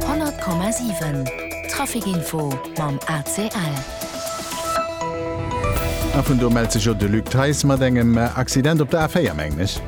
100,7 Trafic Info mam ACL. A vun do mellt sech jo de Luc Theis mat engem Accident op der A4, mengen ech.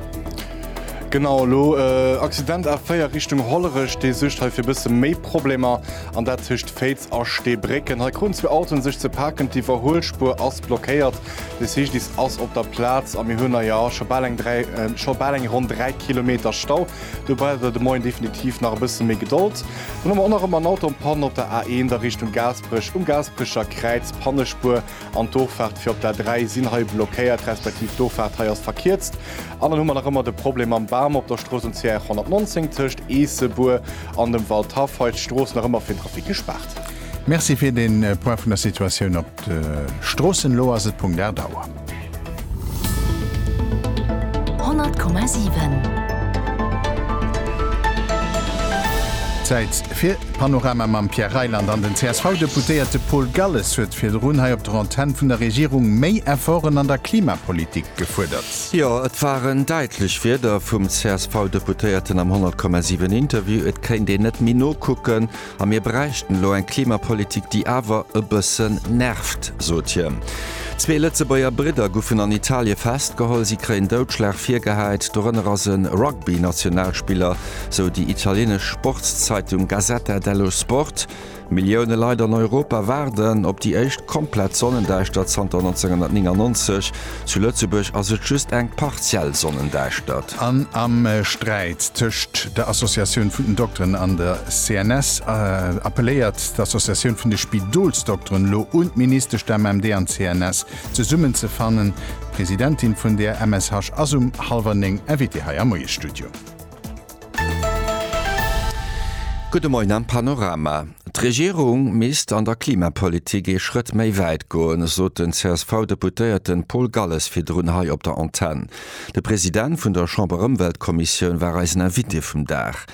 Genau, elo Accident A4 Richtung Hollerech, dee suergt hei fir e bësse méi Problemer, an dat tëscht Féiz a Steebrécken. Hei kruten zwee Autoen sech ze paken, d'Iwwerhuelspuer ass blockéiert, de CGDIS ass op der Plaz a mir hunn hei, jo, scho bal eng dräi, scho bal eng ronn dräi Kilometer Stau. Do braucht der de Moien definitiv nach e bësse méi Gedold. Dann hu mer och nach ëmmer en Auto an Panne op der A1 a Richtung Gaasperech, um Gaasperecher Kräiz, Pannespuer an d'Dorfaacht fir op der A3 sinn hei blockéiert, respektiv d'Dorfaacht hei ass verkierzt. An dann hu mer nach ëmmer de Problem mam Bam op der Strooss um CR 119 tëscht Eessebuer an dem Waldhaff. Hei ass d'Strooss nach ëmmer fir den Trafic gespaart. Merci fir den Point vun der Situatioun op de Stroossen. Elo ass et Punkt 8 Auer. Zäit fir d'Panorama mam Pierre Reyland. An den CSV-Deputéierte Paul Galles huet virdrun hei op der Antenn vun der Regierung méi Efforten an der Klimapolitik gefuerdert. Jo, et waren däitlech Wierder vum CSV-Deputéierten am 100,7 Interview. Et kéint een net méi nokucken, A mir bräichten elo eng Klimapolitik, déi awer e bëssen nervt, sot hien. Zwee Lëtzebuerger Bridder guffen an Italie festgeholl. Si kréien Doudschlag virgehäit, dorënner ass e Rugby-Nationalspiller, sou déi italienesch Sportszeitung Gazzetta dello Sport. Millioune Leit an Europa waarden op déi éischt komplett Sonnendäischtert zanter 1999. Zu Lëtzebuerg ass et just eng partiell Sonnendäischtert. An am Sträit tëscht der Associatioun vun den Dokteren an der CNS appelléiert d'Associatioun vun de Spidolsdokteren elo un d'Ministesch, d'MMD an d'CNS zesummen ze fannen. D'Presidentin vun der MSH ass um hallwer néng Invitée hei am Moiesstudio. Gudde Moien am Panorama. D'Regierung misst an der Klimapolitik ee Schrëtt méi wäit goen, sot den CSV-Deputéierte Paul Galles virdrun hei op der Antenn. De President vun der Chamberëmweltkommissioun war eisen Invité vum Dag.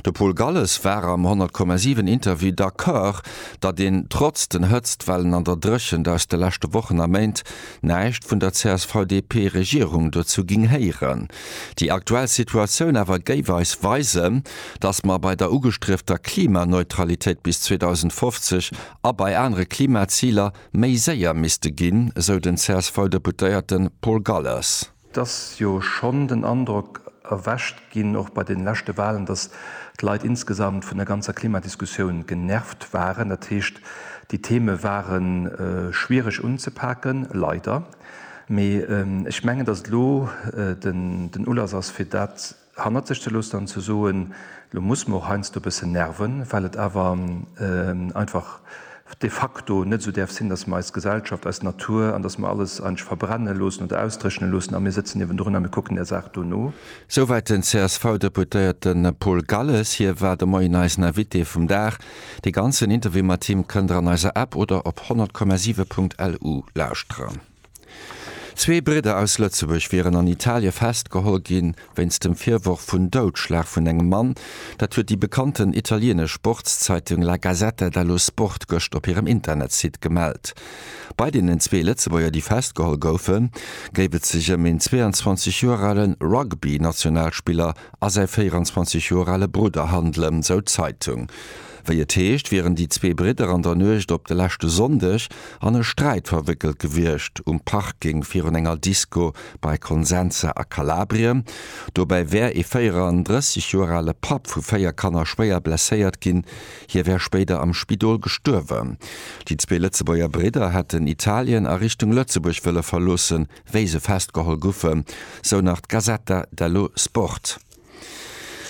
De Paul Galles war am 100,7 Interview d'Accord, datt een trotz den Hëtztwellen an der Dréchent aus de leschte Wochen a Méint näischt vun der CSV-DP-Regierung dozou géing héieren. Déi aktuell Situatioun awer géif eis weisen, datt mer bei der ugestriefter Klimaneutralitéit bis 2050 a bei anere Klimaziler méi séier misste ginn, esou den CSV-Deputéierte Paul Gallers. Et ass jo schonn den Androck erwächt ginn, och bei de leschte Walen, datt d'Leit insgesamt vun der ganzer Klimadiskussioun genervt waren. Dat heescht, déi Theme ware schwiereg unzepaken, leider. Mee ech mengen, datt et elo den Ulass ass, fir dat hannert sech ze loossen an ze soen, Elo muss mer och heiansdo e bëssen nerven, well et awer einfach de facto net esou däerf sinn, datt mer eis Gesellschaft, eis Natur an datt mer alles eigentlech verbrenne loossen oder ausdréchne loossen a mir sëtzen niewendrun a mir kucken där Saach do no. Souwäit den CSV-Deputéierten Paul Galles. Hie war de Moien eisen Invité vum Dag. Dee ganzen Interview mat him kënnt der an eiser App oder op 100,7.lu lauschteren. Zwee Bridder aus Lëtzebuerg wieren an Italie festgeholl gi wéinst dem Virworf vun Doudschlag vun engem Mann. Dat huet déi bekannten italienesch Sportszeitung La Gazzetta dello Sport gëscht op hirem Internetsite gemellt. Bei deenen zwee Lëtzebuerger, déi festgeholl goufen, géif et sech ëm een 22 Joer alen Rugby-Nationalspiller a säi 24 Joer ale Brudder handelen, esou d'Zeitung. Wéi et heescht, wieren déi zwee Bridder an der Nuecht op de leschte Sonndeg an e Sträit verwéckelt gewiescht, um Parking virun enger Disco bei Consenza a Kalabrien. Dobäi wär ee 34 Joer ale Papp vu véier Kanner schwéier blesséiert ginn, hie wär spéider am Spidol gestuerwen. Déi zwee Lëtzebuerger Bridder hätten Italien a Richtung Lëtzebuerg wëlle verloossen. wéi se festgeholl guffe, sou nach d'Gazzetta dello Sport.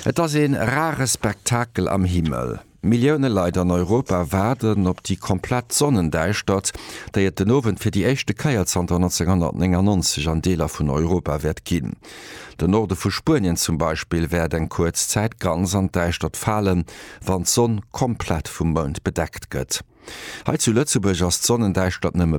Et ass ee rare Spektakel am Himmel. Millioune Leit an Europa waarden op déi komplett Sonnendäischtert, déi et den Owend fir déi éischte Kéier zanter 1999 an Deeler vun Europa wäert ginn. Den Norde vu Spuenien zum Beispill wäert eng kuerz Zäit ganz an d'Däischtert falen, wann d'Sonn komplett vum Mound bedeckt gëtt. Hei zu Lëtzebuerg ass d'Sonnendäischtert nëmme.